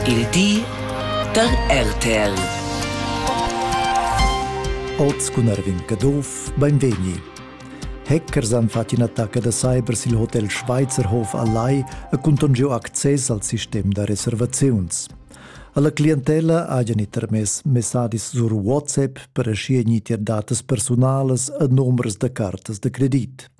Il di da RTL. Oz cun Erwin Caduff, beinvegni. Hackers han fatg in'attacca da cyber sil hotel Schweizerhof a Lai e cunton giu access al sistem da reservaziuns. Alla clientella hajan i termess messadis sur WhatsApp per aschi gnir datas personalas e numers da cartas da credit.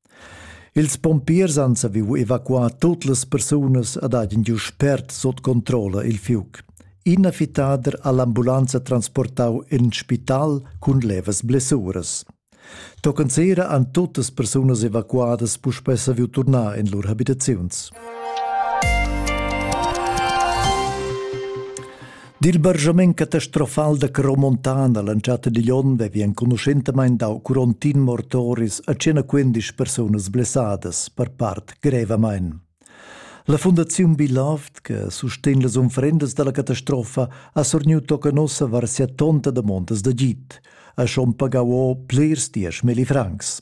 Ils pompiers han saviu evacuar tut las persunas ed han giu spert sut controlla il fiug. Ina fittader ha l'ambulanza transportau en spital cun levas blessuras. Tochen sera han tuttas persunas evacuadas puspei saviu turnar en lur habitaziuns. Dil bargiament catastrofal da Caromontana l'entschatta digl onn vevi enconuschentamein dau curontin mortoris a 115 persunas blessadas per part grevamein. La Fundaziun Beloved, che sustegn las unfrendas dalla catastrofa, ha sorniu tocca nossa var sia tonta damondas da git, ha schon pagau o plirs diesch milli francs.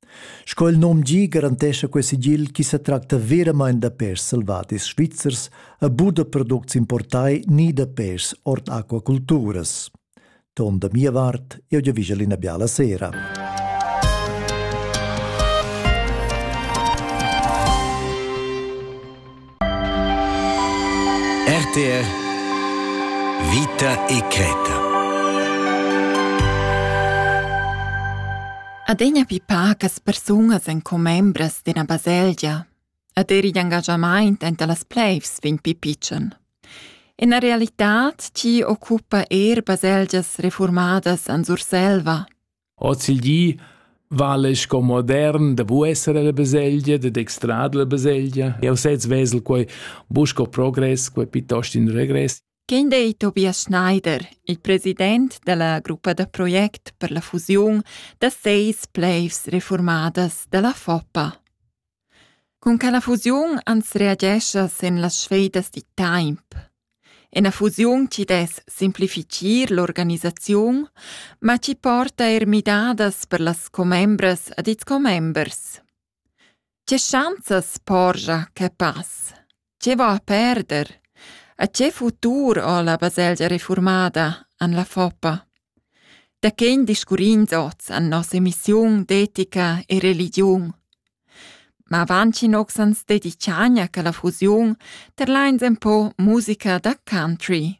Sco il nom gi garantescha quei sigil chi setracta veramaing da pêrs selvadis svizzers e buca da products importai ni da pêrs ord aquaculturas. Ton da mia vart, eu gi vigel ina biala sera. RTR Vita e creta. Adegna pipa che persunas en commembras d'ina baselgia. Ad eri d'engagamaint enta las pleivs vegn pipitschen. Ina realitad ti occupa er baselgias reformadas an Surselva. Hoz il di vala sco modern da bu esser ella baselgia, dad extrar dalla baselgia. Jau sez vesel quai buc sco progress, quai piuttost in regress. Quin ei Tobias Schneider, il president della gruppa da project per la fusiun da seis pleivs reformadas dalla Foppa. Cun quella fusiun ans reagescha sin las sfedas da temp. Ina fusiun chi dess simplifitgir l'organisaziun, ma chi porta eir midadas per las commembras ed ils commembers. Che schanzas porgia que pass? Che va a perder? A che futur ho la baselgia reformada an la Foppa? Da chen discurrins oz an nossa emissiun d'etica e religiun? Ma vanchin ox ans dediciania che la fusiun terlains en po musica da country.